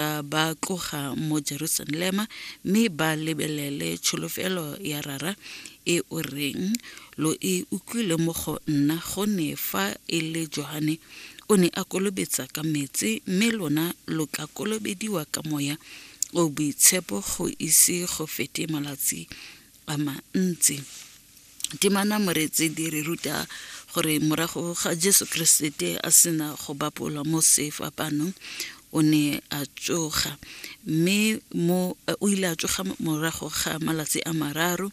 ba ba tloga mo jerusalema mme ba lebelele tsholofelo ya rara e o reng lo e utlwile mo go nna go ne fa e le johane o ne a kolobetsa ka metsi mme lona lo tla kolobediwa ka moya o boitshepo go ise go fete malatsi a mantsi Temana Moretseedi re ruta gore morago ga Jesu Keresete a sena go bapolwa mo sefapanong o ne a tsoga mme mo o ile a tsoga morago ga malatsi a mararo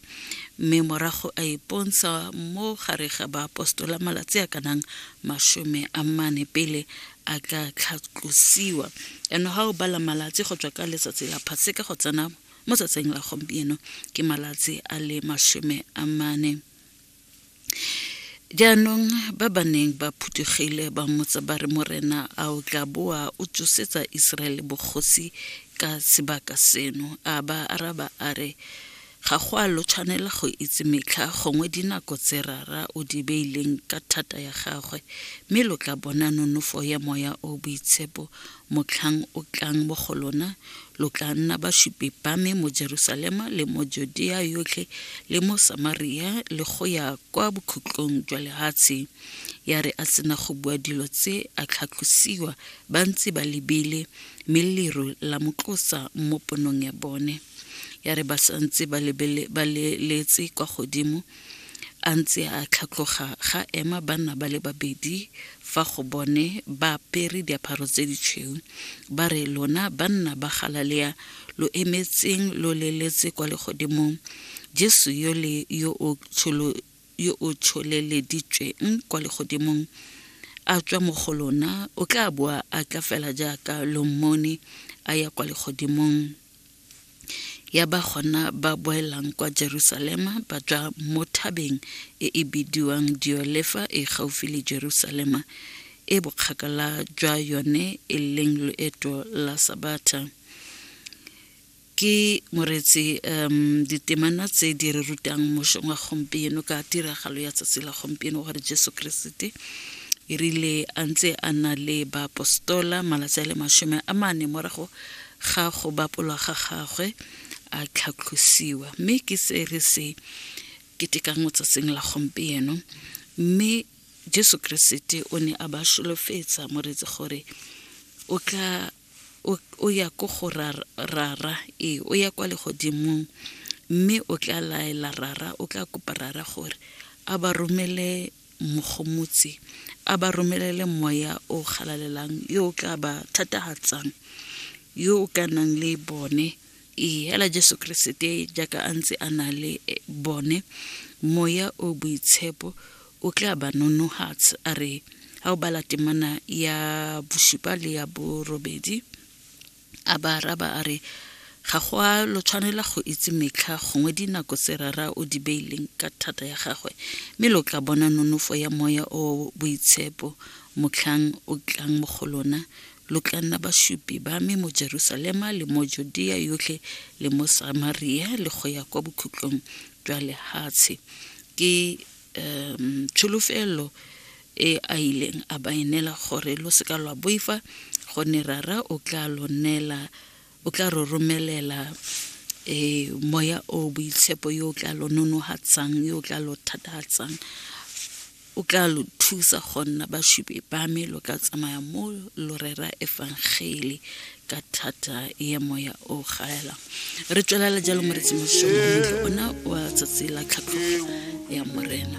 mme morago a ipontsha mo gare ga baapostola malatsi a kanang masome a mane pele a ka tlhatlosiwa and ga o bala malatsi go tswa ka letsatsi la phaseka go tsena mo tsatsing la gompieno ke malatsi a le masome a mane jaanong ba ba neng ba phuthegile ba motsa ba re morena a o tla boa o tsosetsa iseraele bogosi ka sebaka seno a ba araba a re ga go a lo tshwanela go itse metlha gongwe dinako tse rara o di beileng ka thata ya gagwe mme lo tla bona nonofo ya moya o boitshepo Motlhang o tlang mo go lona, lo tla nna basupi ba me mo Jerusalema le mo Judea yotlhe le mo Samaria le go ya kwa bokhutlong jwa lehatshe. Ya re a sena go bua dilo tse a tlhatlosiwa ba ntse ba lebile, mme leru la mo tlosa mo ponong ya bone. Ya re ba santse ba lebele ba leletse kwa godimo, A ntse a tlhatloga ga ema banna ba le babedi fa go bone ba apere diaparo tse ditshweu ba re lona banna ba galalea lo emetseng lo leletse kwa legodimong jesu yo le yo o tsholo yo o tsholeleditsweng kwa legodimong a tswa mo go lona o tla boa a tla fela jaaka lo mmone a ya kwa legodimong ya ba gona ba boelang kwa Jerusalema ba tswa mo thabeng e e bidiwang Diolefa e gaufi le Jerusalema e bokgakala jwa yone e leng loeto la sabatha ke moretsi um ditemana tse di re rutang mošong wa gompieno ka tiragalo ya tsatsi la gompieno gore jesu keresete e rile a ntse a na le baapostola malatsi a le masome a mane morago ga go bapolwa ga gagwe a tlhatlosiwa mme ke se re se ketekang mo tsatsing la gompieno mme jesu keresete o ne a ba solofetsa moreetsi gore o tla o ya ko go rara ee o ya kwa legodimong mme o tla laela rara o tla kopa rara gore a ba romele mogomotsi a ba romelele moya o galalelang yo o ka ba thatahatsang yo o ka nang le bone ee hela jesu keresete jaaka a ntse a na le eh, bone moya o boitshepo o tla ba nonohatsa a re ha o bala temana ya bosupa le ya borobedi A ba araba a re, Ga go a lo tshwanela go itse metlha gongwe dinako tse Rara o di beileng ka thata ya gagwe, mme lo tla bona nonofo ya Moya o Boitshepo motlhang o tlang mo go lona, lo tla nna basupi ba me mo Jerusalema le mo Judea yotlhe le mo Samaria le go ya kwa bokhutlong jwa lehatshe. Ke um tsholofelo e a ileng a ba enela gore lo seka lwa boifa gonne rara o tla lo neela o tla ro romelela e moya o boitshepo yo o tla lo nonogatsang yo o tla lo thatatsang o tla lo thusa go nna basupi ba me lo ka tsamaya mo lo rera efangele ka thata ya moya o gaela re tswelela jalo moretsi mosomo ona wa tsatsi la tlhatlhogo ya morena